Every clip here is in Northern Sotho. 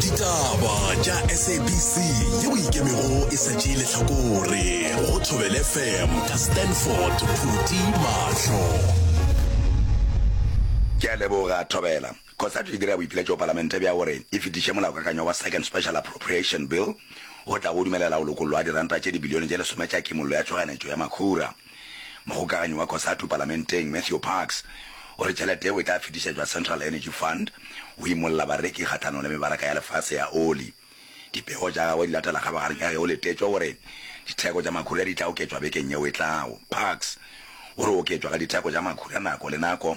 ditaba tša sabc ye o ikemego e sa tšee letlhakore go thobele fm ka stanford phuti mahlo ke a leboga thobela kgotsa di dira boipiletšo palamente bja gore e fetiše molaokakanywa wa second special appropriation bill o tlago dumelela go lokollo ga diranta tše dibilione tše lesome tša kimollo ya tšhoganetšo ya makhura Mogokaganyi wa Cosatu palamenteng, Matthew Parks, o re tšhelete yeo e tla fetišetšwa Central Energy Fund go imolla bareki kgahlanong le mebaraka ya lefase ya oli. Dipego tša gagwe di latela kgabagareng ka ge go letetšwe gore ditheko tša makhura di tla oketšwa bekeng yeo e tlago. Parks o re oketšwa ga ditheko tša makhura nako le nako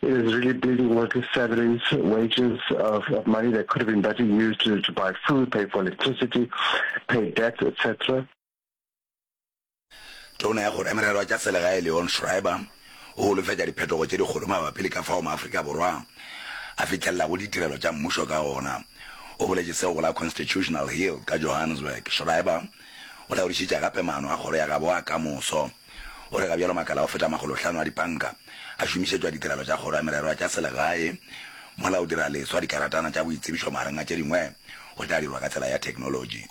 It is really bleeding with salaries, wages of, of money that could have been better used to, to buy food, pay for electricity, pay debts, etc. Tona ya go remerelwa tša selegae Leon Schreiber o holofetša diphetogo tše dikgolo mabapi le ka fao maAfrika Borwa a fihlelelago ditirelo tša mmušo ka gona. O boletše seo go la Constitutional Hill ka Johannesburg. Schreiber o laodišitše gape maano a kgoro ya gabo a kamoso. O re ga bjalo makala a go feta makgolohlano a dipanka a šomišetšwa ditirelo tša Kgoro ya Mererwa tša Selegae mola go dira leswa dikaratana tša boitsebišo magareng a tše dingwe go tla dirwa ka tsela ya theknolotši.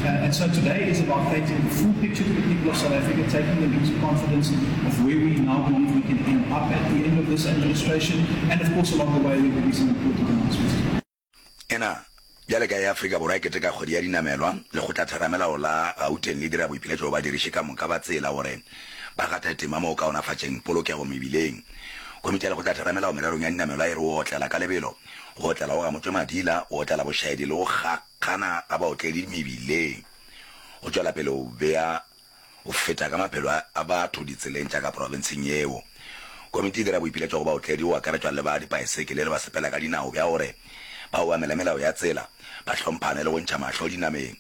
And so today is about creating the full picture for the people of South Africa, taking them into confidence of where we now believe we can end up at the end of this administration, and of course along the way there will be some important announcements. Ena bjale ka ya Afrika Borwa e keteka kgwedi ya dinamelwa, lekgotla theramelao la Gauteng le dira boipiletšo go badiriši ka moka ba tsela gore ba gate tema mo go kaonafatšeng polokego mebileng. Komiti ya lekgotla theramelao mererong ya dinamelwa e re go otlela ka lebelo, go otlela go gamotšwe madila, go otlela bošaedi le go Gana ga baotledi mebileng go tšwela pele go bea go feta ka maphelo a batho ditseleng tša ka profenseng yeo. Komiti e dira boipiletšo go baotledi, go akaretšwa le ba dipaesekele le basepela ka dinao, bja gore ba obamele melao ya tsela, ba hlomphane le go ntšha mahlo dinameng.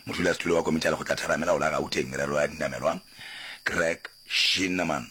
Modulasetulo wa Komiti ya Lekgotla-Theramelao la Gauteng, Merero ya Dinamelwa, Greg Schinneman,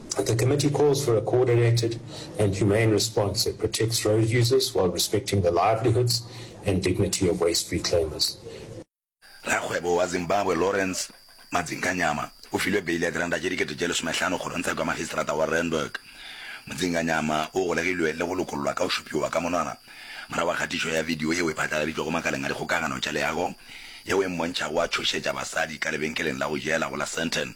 The committee calls for a coordinated and humane response that protects road users while respecting the livelihoods and dignity of waste reclaimers. Rakgwebo wa Zimbabwe Lawrence Madzinganyama o filwe beile ya diranta tše dikete tše lesomehlano kgorongtsheko ya magistrata wa Randburg. Mdzinganyama o golegilwe le go lokollwa ka go šupiwa ka monwana morago ga kgatišo ya video yeo e phatlaladitšwego makaleng a dikgokagano tša leago yeo e mmontšhago a tšhošetša basadi ka lebenkeleng la go jela go la Sandton.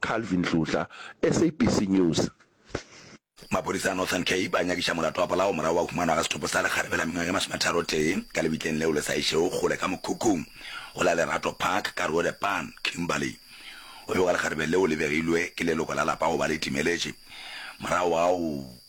Calvin Tlotla, SABC News. Maphodisa a Northern Cape a nyakiša molato wa polao morago wa humanwa ga sethopo sa lekgarebe la mengwaga e masometharotee ka lebitleng leo le sa išego kgole ka mokhukhung go la Lerato Park, Karoo The Pan, Kimberley. Go bewa lekgarebe leo le begilwe ke leloko la lapa go ba le timeletše morago ga go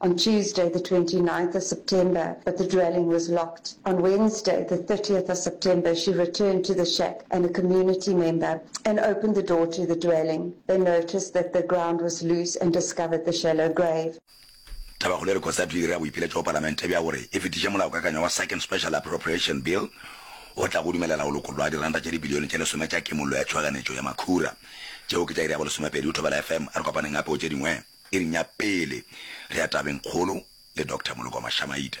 on Tuesday the 29th of September but the dwelling was locked. On Wednesday the 30th of September she returned to the shack and a community member and opened the door to the dwelling. They noticed that the ground was loose and discovered the shallow grave. Tabakgolo e re Cosatu e dira boipiletšo go Palamente bja gore e fetiše molaokakanywa wa Second Special Appropriation Bill o tlago go dumelela go lokollwa ga diranta tša dibilione tše lesome tša Kimollo ya Tšhoganetšo ya Makhura tšeo ke tša iri ya bolesomepedi go thobela FM. A re kopaneng gape go tše dingwe. Iring ya pele re ya tabeng kgolo le Doctor Moloko Mashamaita.